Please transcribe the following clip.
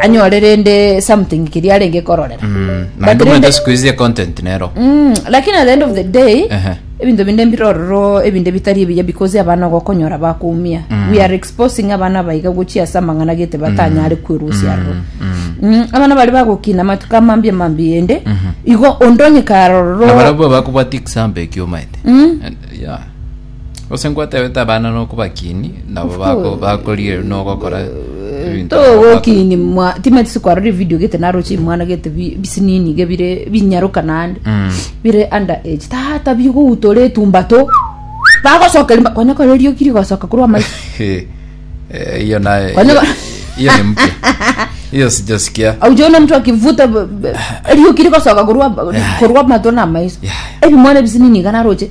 anyore rende something keria arenge kororera Mm, But naende rende- omanyete siku izi econtent nero Mm, lakini at the end of the day Ehe. ebinto binde mbirororo ebinde bitari ebiya because abana ogokonyora bakumia we are exposing abana baiga gochia ase amang'ana gete batanyare kwerusia aroro Mm, abana bari bagokina matuko amambia mambi ende igo ondonye karororo nabarabwo bakobwati example ekio omaete Yeah. Gose ngwatebete abana nokobakiini, nabo bako bakorigereria nogokora ebinto abao bakora. togokini mwa timati sikwarora evideo gete naroche mwana gete bi- bisinini iga bire binyaroka naende Mm. bire under age tata bigoutora etumba to bagosoka rimba konya kore rioki rigosoka korwa amaiso Eh, eh, hiyo naye Kwani- hiyo- hiyo ni mpya hiyo sijasikia aujaona mtu akivuta b- b- rioki rigosoka korwa korwa amato na amaiso Yeah. ebimwana ebisinini iga naroche